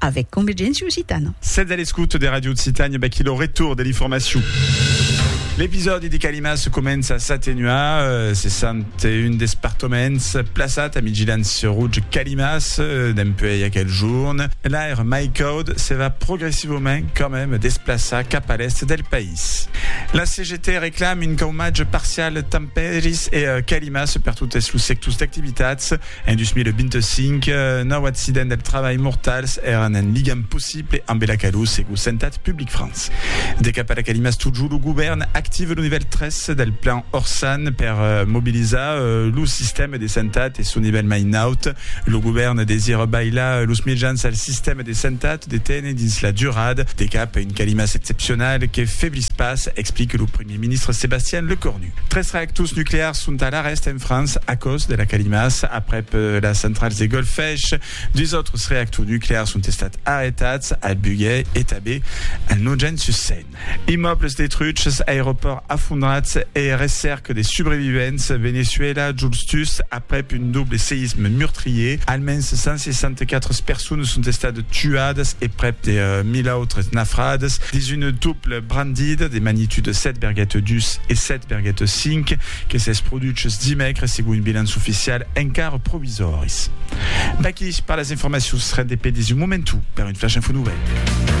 avec Convergència Occitana. Sètz a l'escouta de Radio Occitània, vaquí lo retorn de l'informacion. L'episòdi de Calimas comença a s'atenuar, se sent un despertoments plaçat a Migilants Rouge Calimas dempuèi aquel jorn. L'aire mai caud se va progressivament quand même desplaçar cap a l'èst del país. La CGT reclame un caumatge parcial tant Paris e Calimas per totes los sectors d'activitats. En 2025, nòu accidents del trabalh mortals èran en ligam possible ambe la calor, segur Santat Public France. De cap a la calimas totjorn, lo govèrn active lo nivèl 3 del plan Orsan per mobilizar lo sistèma de santat e son nivèl mai naut. Lo govèrn desira bailar los mejans al sistèma de santat de téner dins la durada, de cap a un calimas excepcional que feblis pas, explique lo Eth ministre Sébastien Lecornu. Tres reactors nuclears sont alara hèst en França, a còst de la Calimàs, aprèp las centrals de Golfech. Dus autres reactors nuclears sont estats arretats, al Buguet e tanben al Nogent-sur-Seine. Immòbles detruchs, aeropòrt afondrat e recèrca de subrevivents. Veneçuela, Juls tus aprèp un doble seïsme meurtrier. Almens 164 personas sont estadas tuadas e prèp de 1.000 autres nafrades dins un doble. Brandida de magnitude 7,2 e 7,5 que s'es produches dimècres segon bilans oficial encara provisòris. Vaquí pas las informacions, rendez-pe dins un momentu per un flash info novèl.